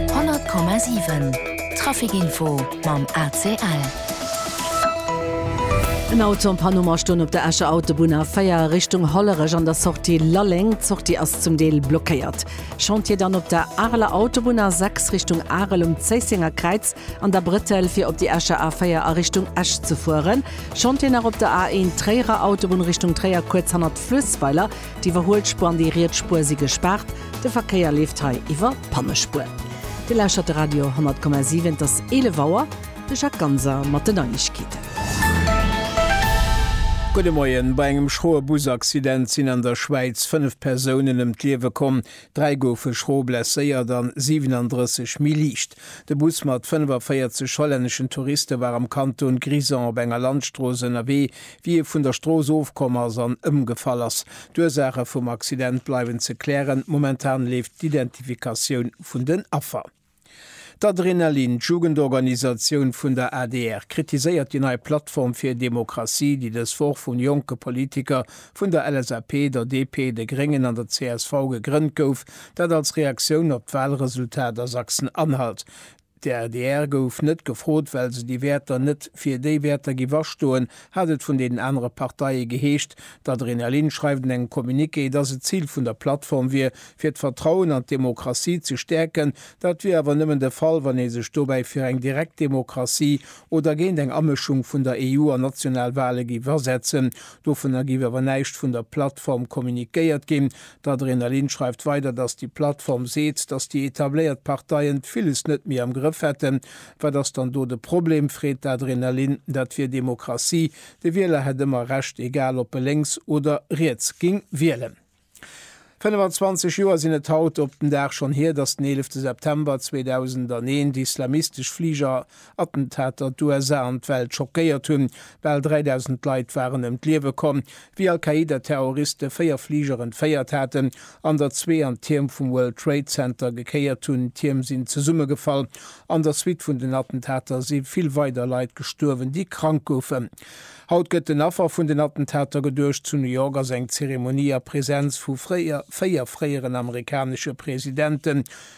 100,7 Traficinfo mam ACL. En Auto an Panne ma stoung op der Escher Autobunn A4 Richtung Hollerech an der Sortie Lalleng. D'Sortie ass zum Deel blockéiert. Chantier dann op der Areler Autobunn A6 Richtung Arel um Zéissenger Kräiz an der Brëttel fir op déi Escher A4 a Richtung Esch ze fueren. Chantier nach op der A1 Tréierer Autobunn Richtung Tréier kuerz hannert Fluessweiler. D'Iwwerhuelspuer an déi riets Spuer si gespaart. De Verkéier leeft hei iwwer d'Pannespuer. Dir lauschtert de Radio 10,7. Et ass 11 Auer. De Jacques Ganser mat den Neiegkeeten. Gudde Moien. Bei engem schroe Busaccident sinn an der Schwäiz 5 Persounen ëm d'Liewe komm. Dräi goufe schro blesséiert an 37 méi liicht. De Bus mat 45 hollänneschen Touriste war am Kanton Grisons op enger Landstrooss ënnerwee, Wie e vun der Strooss ofkomm ass an ëmgefall ass. D'Ursaache vum Accident bleiwen ze klären. Momentan leeft d'Identifikatioun vun den Affer. D'Adrenalin, d'Jugendorganisatioun vun der adr, kritiséiert déi nei Plattform fir Demokratie, déi dës Woch vu jonke Politiker vun der LSAP, der DP, de Gréngen an der csv gegrënnt gouf. Dat als Reaktioun op d'Walresultat a Sachsen-Anhalt. D'adr gouf net gefrot, well se déi Wäerter net fir déi Wäerter giff astoen, hat et vun deenen anere Parteie geheescht. D'Adrina Lin schreift an engem Communiqué, dass et d'Zil vun der Plattform wier, fir d'Vertrauen an d'Demokratie ze stäerken. Dat wier awer nëmmen de Fall, wann ee sech dobäi fir eng Direktdemokratie oder géint eng Amëschung vun der EU an national Wale giff asetzen. Dovunner giff awer näischt vun der Plattform kommuniquéiert ginn. D'Adrenalin schreift weider, datt déi Plattform seet, datt déi etabléiert Parteien villes net méi am Grëff hätten. Wat ass dann do de Problem? freet d'Adrenalin. Dat wier Demokratie, de Wieler hätt ëmmer Recht, egal ob e lénks oder riets géing wielen. 25 Joer sinn et haut op den Dag schonn hier, datt den 11 September 2001 d'islamistesch Fliger Attentater d'USA an d'Welt schockéiert hunn. Bal 3.000 Leit waren ëm d'Liewe komm, wéi Al-Qaida-Terroriste véier Fliger entféiert haten an der zwee an d'Tierm vum World Trade Center gekéiert hunn. D'Tierm sinn zesummegefall. An der Suite vun den Attentater si vill weider Leit gestuerwen, déi krank goufen. Haut gëtt den Affer vun den Attentater geduecht. Zu New York ass eng Zeremonie a Presenz vu véier fréieren amerikanesche Presidenten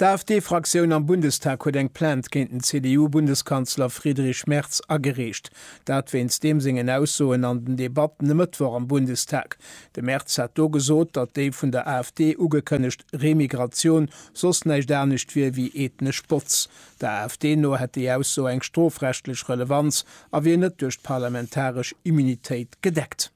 D'AfD-Fraktioun am Bundestag huet eng Plainte géint den CDU-Bundeskanzler Friedrich Merz agereecht. Dat wéinst deem sengen Aussoen an den Debatten e Mëttwoch am Bundestag. De Merz hat do gesot, datt déi vun der AfD ugekënnegt Remigratioun soss näischt anescht wier wéi ethnesch Botz. Der AfD no hätt déi Ausso eng strofrechtlech Relevanz a wier net duerch d'parlamentaresch Immunitéit gedeckt.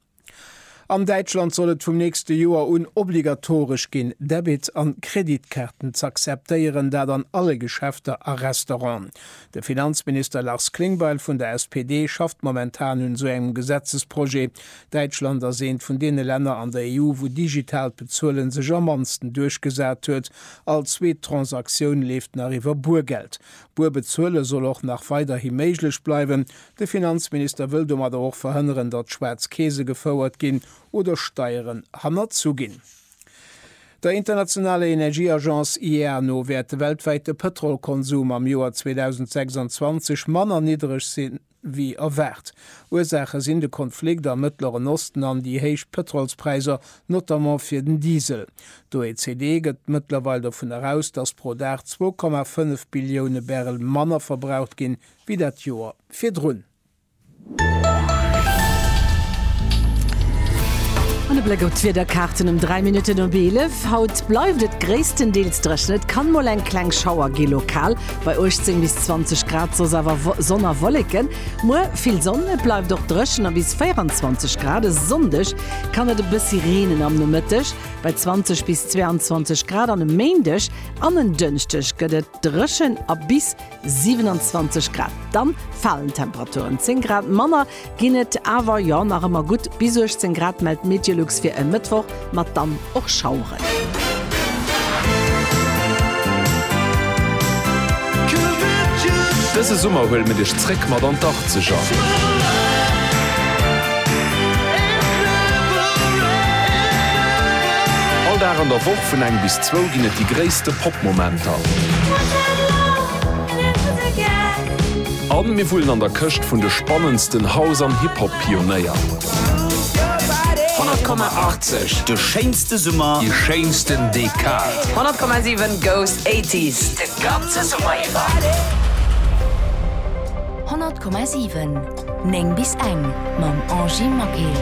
An Däitschland soll et vum nächste Joer un obligatoresch ginn, Debit a Kreditkaarten z'akzeptéieren, dat an alle Geschäfter a Restauranten. De Finanzminister Lars Klingbeil vun der SPD schafft momentan un esou engem Gesetzesprojet. Däitschland ass eent vun deene Länner an der EU, wou digitaalt Bezuelen sech am mannsten duerchgesat huet. All zweet Transaktioun leeft nach iwwer Buergeld. Buer bezuele soll och nach weiderhi méiglech bleiwen, De Finanzminister wëll domadder och verhënneren, datt schwaarz Keese gefouert ginn oder Steieren hannerzu ginn. Der internationaler Energieagence IEA no wäert de weltwäite Pëtrolkonsum am Joer 2026 manner niddereg si wéi erwaart. Ursaache sinn de Konflikt am Mëttleren Osten an déi héich Pëtrolspräisser, notamment fir den Diesel. D'OECD gëtt mëttlerweil dovun eraus, datt pro Dag zwou Komma fënnef Billioune Barrel manner verbraucht ginn, wéi dat Joer virdrun. An e Bléck op d'Wiederkaarten um 3 Minutten op 11. Haut bleift et gréisstendeels dréchen, et kann mol eng kleng Schauer gi lokal bei 18 bis 20 Grad, soss awer Sonn a Wolleken. Muer vill Sonn, et bleift och dréchen a bis 24 Grad. E Sonndeg kann et e bëssi reenen am Nomëtteg bei 20 bis 22 Grad an e Méindeg an en Dënschdeg gëtt et. Dréchen a bis 27 Grad. Dann falen d'Temperaturen, 10 Grad manner ginn et awer jo nach ëmmer gutt bis 18 Grad, mellt d'Meteolux fir e Mëttwoch mat dann och Schaueren. Dëse Summer huele mir dech zréck mat an d'Achzeger. All Dag an der Woch vun eng bis Zwou ginn et déi gréisste Pop-Momenter. A mir wullen an der Këscht vun de spannendsten House an Hip-Hop-Pionéier. 100,80, de schéinste Summer, déi schéinsten Dekad. 100,7 goes 80s de ganze Summer iwwer. 100,7 9 bis eng mam Angy Maquet.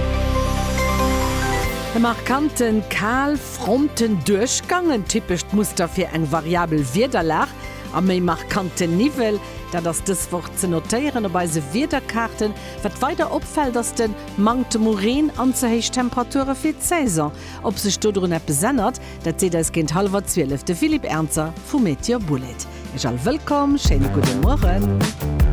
E markanten Kal. Fronten duerchgaangen, typescht Muster fir eng variabel Wiederlag a méi markanten Niwwel, dat ass dës Woch ze notéieren op eise Wiederkaarten. Wat weider opfält, ass de Manktem u Reen an ze héich Temperature fir d'Saison. Ob sech dodrun eppes ännert, dat seet eis géint hallwer 12 de Philippe Ernzer vu Meteor Bullet. Iech all wëllkomm, schéine gudde Mueren.